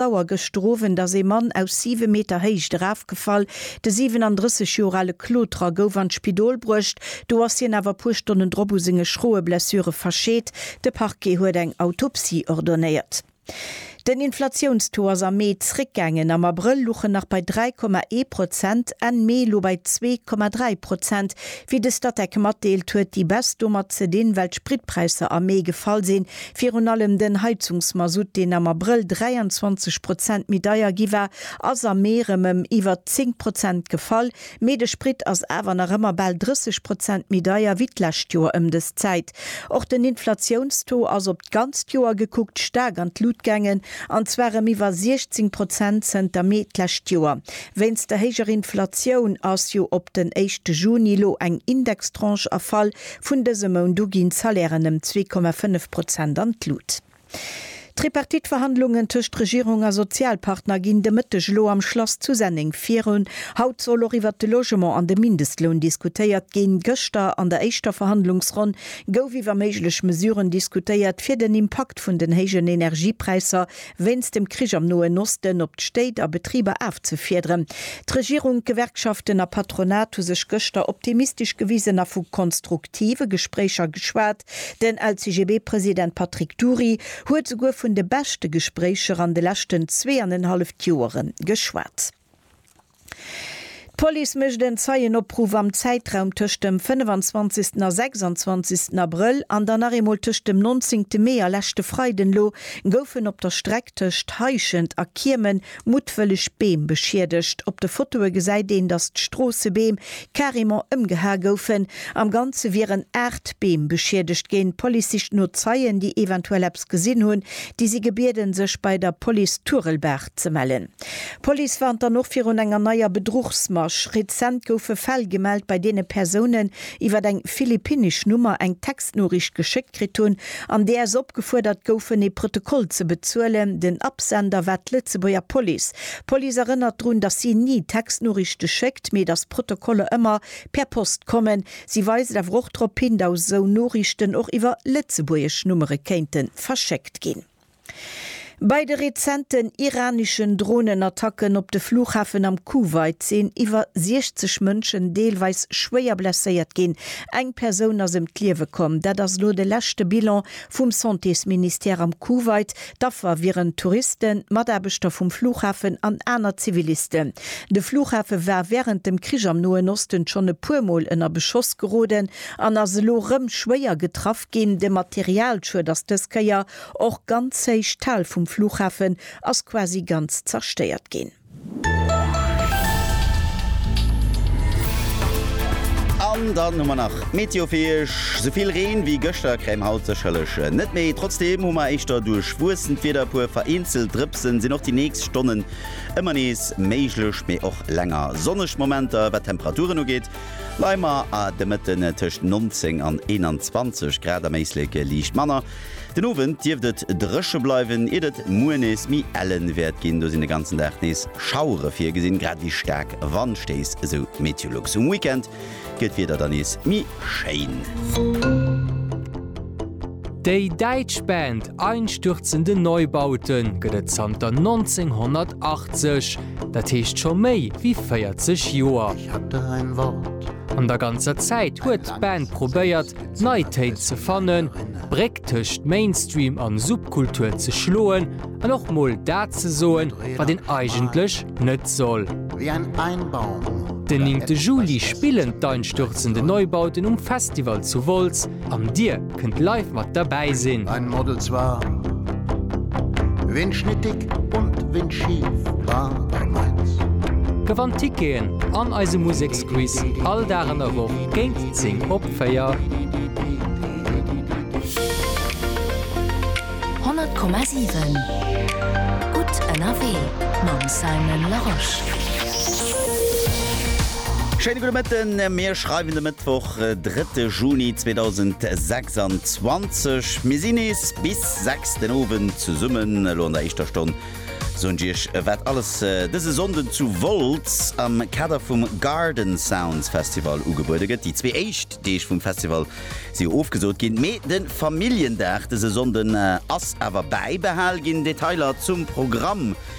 d'Auer gëscht den Owend ass ee Mann aus 7 Meter Héicht erafgefall. De 37 Joer ale Kloterer gouf an d'Spidol bruecht, do ass hien awer e puer Stonnen drop u senge schroe Blessure verscheet. De Parquet huet eng Autopsie ordonéiert. Den Inflatiounstaux ass am Mee zréckgaangen, am Abrëll luch en nach bei 3,1 Prozent, Enn Mee elo bei 2,3 Prozent. Wéi de Statec matdeelt, huet déi Baisse domat ze dinn, well d'Spritpräisser am Mee gefall sinn. Virun allem den Heizungsmasutt, deen am Abrëll 23 Prozent méi deier gi war, ass am Mee erëm ëm iwwer 10 Prozent gefall. Mee de Sprit ass awer nach ëmmer bal 30 Prozent méi deier wéi d'lescht Joer ëm dës Zäit. Och den Inflatiounstaux ass op d'ganzt Joer gekuckt staark an d'Lut gaangen, an zwar ëm iwwer 16 Prozent zënter Mee d'lescht Joer. Wéinst der héijer Inflatioun ass jo op den éischte Juni elo eng Indextranche erfall, Vun dësem Mount u ginn d'Salairen ëm zwee Komma fënnef Prozent an d'Lut. D'Tripartite-Verhandlungen tëscht Regierung a Sozialpartner ginn de Mëtteg elo am Schlass zu Senneng virun. Haut soll och iwwert de Logement an de Mindestloun diskutéiert ginn. Gëschter an der éischter Verhandlungsronn gouf iwwer méiglech Mesuren diskutéiert, fir den Impakt vun den héijen Energiepräisser wéinst dem Krich am Noen Osten, op d'Stéit a Betriber afzefiederen. D'Regierung, d'Gewerkschaften a Patronat hu sech gëschter optimistesch gewisen a vu konstruktive Gespréicher geschwat. Den LCGB-President Patrick Dury huet souguer vun de beschte Gespréicher an de leschten zweeanenhalleft Joere geschwat. D'Police mécht en Zeienopruff am Zäitraum tëscht dem 25 a 26 Abrëll an dann nach eemol tëscht dem 19 Mee a leschte Freiden. Elo goufen op der Streck tëscht Heischent a Kiemen muttwëlleg Beem beschiedegt. Op de Fotoe gesäit een, datt d'Stroossebeem carrément ëmgehae goufen. Am Ganze wieren 8 Beem beschiedegt ginn. D'Police sicht no Zeien, déi eventuell eppes gesinn hunn. Déi si gebieden, sech bei der Police Turelbaach Ze mellen. D'Police warnt dann och virun enger neier Bedruchsmasch. Rezent goufe Fäll gemellt, bei deene Persounen iwwer eng philippinnesch Nummer eng Textnoriicht geschéckt kritt hunn, an där se opgefuerdert goufen, ee Protokoll ze bezuelen. Den Absender war d'Lëtzebuerger Police. D'Police erënnert drun, datt si ni Textnoriichte schéckt, mee datt d'Protokoller ëmmer per Post kommen. Si weist awer och drop hin, daus esou Noriichten och iwwer lëtzebuergesch Nummere kéinte verschéckt ginn. Bei de rezenten iraneschen Dronenattacken op de Flughafen am Kuwait sinn iwwer 60 Mënschen deelweis schwéier blesséiert ginn. Eng Persoun ass ëm d'Liewe komm. Dat ass elo de leschte Bilan vum Santésministère am Kuwait. D'Affer wieren Touristen, Mataarbechter vum Flughafen an aner Zivilisten. De Flughafe war wärend dem Krich am Noen Osten schonn e puer Mol ënner Beschoss geroden an ass elo rëm schwéier getraff ginn. De Materialschued ass dës Kéier Och ganz héich d'Hal vum Flughafen ass quasi ganz zerstéiert ginn. An dann hu mer nach d'Meteo fir iech. Souvill Reen wéi gëschter kréie mer haut sécherlech net méi. Trotzdeem hu mer éischter duerchwuessent Wieder. E puer vereenzelt Drëpsen sinn och déi nächst Stonnen ëmmer nees méiglech, mee och länger sonneg Momenter. Wat d'Temperaturen ugeet, leie mer de Mëtten tëscht 19 an 21 Grad, am Éislek liicht manner. Den Owend dierft et dréche bleiwen, iert et muer nees méi ellen wäert ginn. Do sinn de ganzen Dag nees Schauere virgesinn, grad ewéi staark Wandstéiss, esou Meteolux. Um Weekend gëtt d'Wieder dann nees méi schéin. Déi däitsch Band Einstürzende Neubauten gëtt et zanter 1980, dat heescht scho méi wéi 40 Joer. An der ganzer Zäit huet d'Band probéiert, d'Neitéin ze fannen, d'Bréck tëscht Mainstream an Subkultur ze schloen an och mol dat ze soen, wat een eigentlech net soll. Den néngte Juli spillen d'Einstürzende Neubauten um Festival zu Wolz an dir kënnt live mat derbäi sinn. Gewannt Ticketen an eise Museksquiz all Dag an der Woch géint 10 op Honnert Komma siwen Gutt ënnerwee mam Simon Larosche. Schéine gudde Mëtten, mir schreiwen de Mëttwoch, drëtte Juni 2026. Mir sinn nees bis sechs den Owend zesummen. Elo an der éischter Stonn soen Iech wat alles dëse Sonnden zu Wolz am Kader vum Garden Sounds Festival ugebuede gëtt. Déi zwee éischt Deeg vum Festival si jo ofgesot ginn, mee de Familljendag dëse Sonnden ass awer bäibehal ginn. Detailer zum Programm